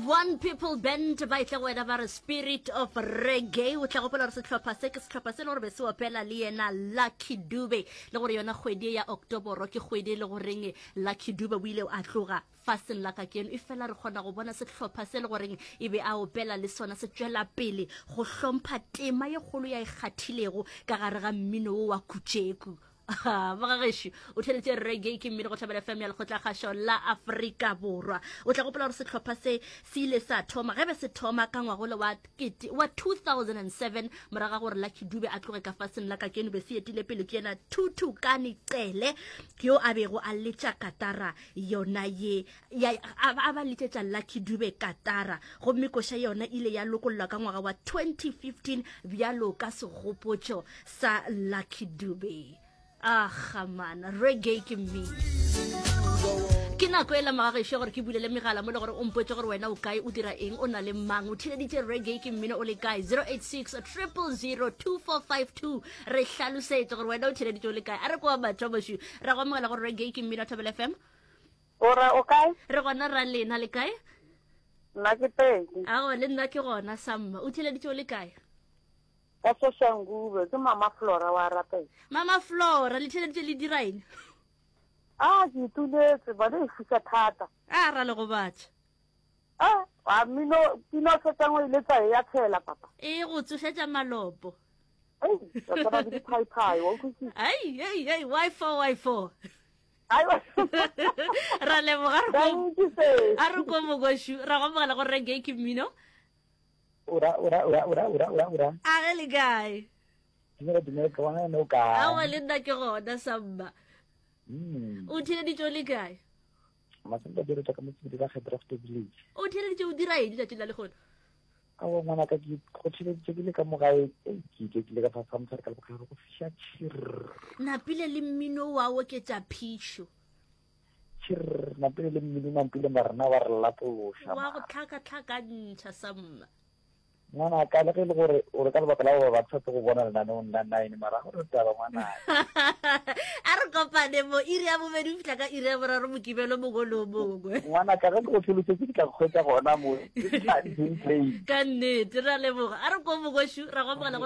one people band ba itle go wena ba re spirit of reggae o tla gopola gore setlhopha se ke setlhopha se le gore be se opela le yena lucky dube le gore yona kgwedi ya octoboro ke kgwedi e le goreng lucky dube o ile a tloga faseng la ka keno e fela re kgona go bona setlhopha se le goreng e be a opela le sona se tswela pele go hlompha tema ye kgolo ya e kgathilego ka gare ga mmino wo wa kutšeku bagagešo o theletše rege ke mmele go tlhabela fm ya lekgotlakgašo la aforika borwa o tla gopola gore setlhopha se se ile sa thoma ge be se thoma ka ngwagole wa 2007 moraga gore la kidube a tloge ka faseng la ka keno be se etile pele ke yena thuthukane cele yo a bego a letša katara yona ye ya a ba a ba letšetša lucky dube katara gomme koša yona ile ya lokollwa ka ngwaga wa 2015 bjalo ka segopotšo sa lucky dube a gamana reggae ke mmino ke nako e lamaga gešo gore ke bulele megala mo le gore o mpotse gore wena o kae o dira eng o na le mang o thileditše reggae ke mmino o le kae 086 002452 re hlalosetse gore wena o thileditše o le kae a re kwa batho bašwi ra go amogela gore reggae ke mmino thobel fm O ra o kae? Re gona ra lena le kae? Nna ke pedi. Awa le nna ke gona samma. O theleditše o le kae? Ka Soshangube ke mama Flora wa rapela. Mama Flora le theleditše le diraine? Ah ke ituletse bana e fusa thata. Ah ra le gobatša. Ah wa mino pino fetsa ngo ile tsa ya tshela papa. E go tsošetša malopo. Ei, wa tsaba di phai phai wa utlwisisa. Ei ei ei why for why for? ra leboga a re ko mokošu ra go mogela go rege ke mmino a ge le kae awa le nna ke gona samba hmm. o theleditso le kae o theleditso o dira eng letsatsi la le gona a wa ngwana ka ke go theleditse ke le ka mogae ke ke kile ka fasa mosadi ka lebogare go fiša tšhirr napile le mmino wa oketša phišo tšhirr napile le mmino nampile marena wa re lapološa wa go tlhakatlhakantšha samma ngwana ka le ge e le gore o re ka lebaka la gore ba tshwetse go bona lenaneong la nine mara go re taba ngwana a re kopane mo iri ya bobedi o fitlha ka iri ya boraro mokibelo mongwe le o mongwe ngwana ka ge ke go tlholosetse ke tla kgwetsa gona mo ka nnete ra leboga a re ko mokošu ra gopola gore